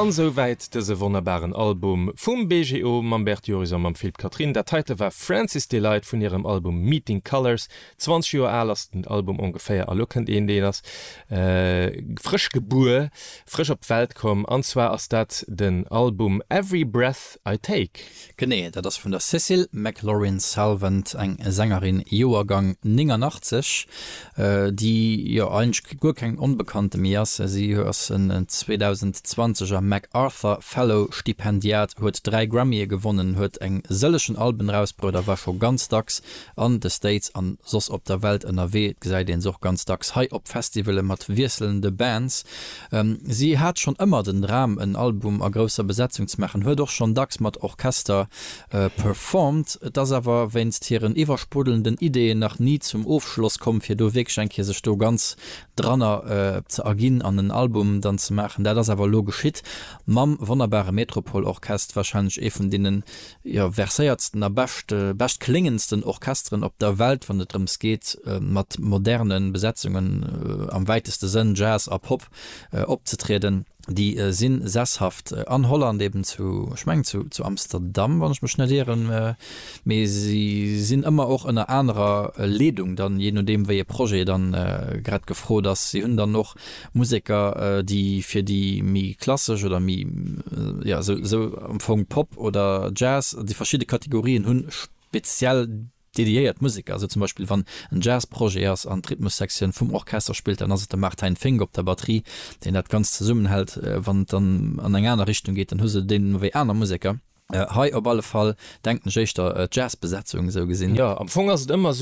An esou wäit dëse wonnerbaren Album vum BGO mam Bert Jurison, mam Phil'p Catherine. Dat heite war Francis Delight vun hirem Album Meeting Colours. 20 Joer al ass den Album ongeféier a lo kënnt een, deen ass frësch gebuer, frësch op d'Welt komm an zwar ass dat den Album Every Breath I Take. Genee, dat ass vun der Cécile McLorin-Salvant, eng Sängerin, Joergang 89, déi jo eigentlech guer keng Onbekannte méi ass. Si ass en 2020 er MacArthur Fellow Stipendiat, huet dräi Grammye gewonnen, huet eng sëllegen Alben erausbruet a war scho ganz dacks an de States an soss op der Welt ënnerwee. Et gesäit een se och ganz dacks hei op Festivale mat wiesselnde Bands. Si hat schonn ëmmer den Dram en Album a grousser Besetzung ze maachen, huet och schonn dacks mat Orchester performt. Et ass awer wéinst hiren iwwersprudelnden Ideeën nach ni zum Ofschloss komm fir do wierklech eng Kéier sech do ganz dranner ze erginn an en Album dann ze maachen. Dat ass awer elo geschitt mam wonnerbare Metropol Orchest, warscheinlech ee vun deene jo, verséiertsten a bescht bescht kléngendsten Orchesteren op der Welt, wann et drëms geet, mat moderne Besetzungen, am wäiteste Sënn, Jazz a Pop, opzetrieden. Déi si sesshaft an Holland, eben zu, ech mengen, zu zu Amsterdam, wann ech mech net ieren, mee si sinn ëmmer och ënner anerer Leedung dann, jee nodeem, wéi ee Projet dann grad gefrot ass. Si hunn dann och Museker, déi fir déi méi klassesch oder méi, jo, esou am Fong Pop oder Jazz, déi verschidde Kategorien hu speziell dediéiert Museker. Esou zum Beispill, wann en Jazzprojet ass an d'Rhythmussektioun vum Orchester spillt, dann ass et de Martijn Fink op der Batterie, deen dat Ganzt zesummenhält. Wann et dann an eng aner Richtung geet, dann hu se deemno wéi aner Museker. Hei op alle Fall denken ech éischter d'Jazzbesetzung esou gesinn. Jo, am Fong ass et ëmmer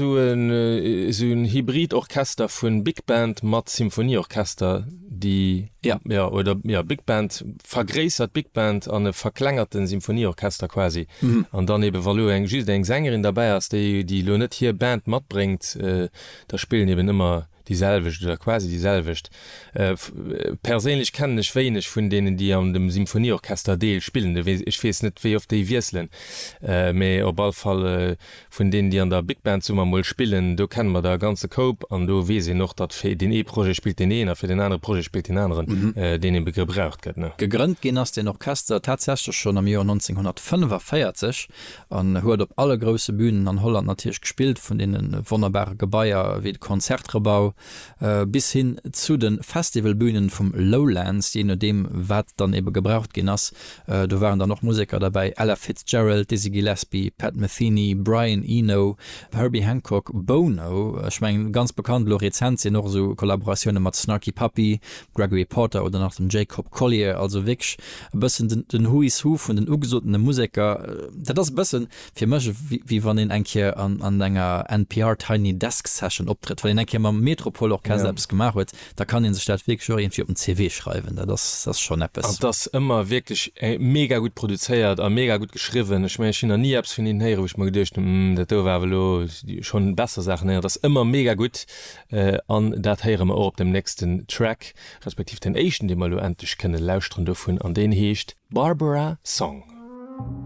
esou en hybrid Orchester vun Big Band mat Symphonieorchester, déi, jo, jo, oder jo, Big Band, vergréissert Big Band an e verklengerten Symphonieorchester quasi, an dann eben, wa elo eng just eng Sängerin derbäi ass, déi déi elo net hir Band matbréngt, da spillen eben ëmmer. Déi selwecht oder quasi déi selwecht. Perséinlech kennen ech wéineg vun deenen, déi an dem Symphonieorchester Deel spillen. Du weess, ech weess net, wéi oft déi wiesselen, mee op all Fall vun deenen, déi an der Big Band summer mol spillen, do kenne mer der e ganze Koup. An do weess een och, datt fir deen ee Projet spillt deen een a fir deen anere Projet spillt deen aneren, deen ee gebraucht gëtt. Gegrënnt ginn ass deen Orchester tatsächlech schonn am Joer 1945. En huet op alle grousse Bünen an Holland natierlech gespillt, vun deene wonnerbare Gebaier wéi de Concertgebouw bis hin zu de Festivalbünen vum Lowlands, jee nodeem wat dann ebe gebraucht ginn ass. Do waren dann och Museker derbäi, Ella Fitzgerald, Dizzy Gillespie, Pat Metheny, Brian Eno, Herbie Hancock, Bono, ech mengen ganz bekannt elo rezent sinn och esou Kollaboratioune mat Snarky Puppy, Gregory Porter oder nach den Jacob Collier, also wierklech e bëssen den Who is Who vun den ugesotene Museker. Dat ass e bësse fir mech, wéi wann een eng Kéier an enger NPR Tiny Desk Session optrëtt. Wann een eng Kéier mam Metropol Orchester eppes gemaach huet, da kann een sech dat wierklech och iergendwéi op den CV schreiwen. Dat ass schonn eppes. An et ass ëmmer wierklech mega gutt produzéiert a mega gutt geschriwwen. Ech mengen, ech hunn nach ni eppes vun hinnen héieren, wou ech mer geduecht hunn, dat do war awer elo, schonn besser Saachen héieren. Et ass ëmmer mega gutt. An dat héiere mer och op dem nächsten Track, respektiv den éischten, dee mer elo endlech kënne lauschteren dovun, an deen heescht Barbara Song.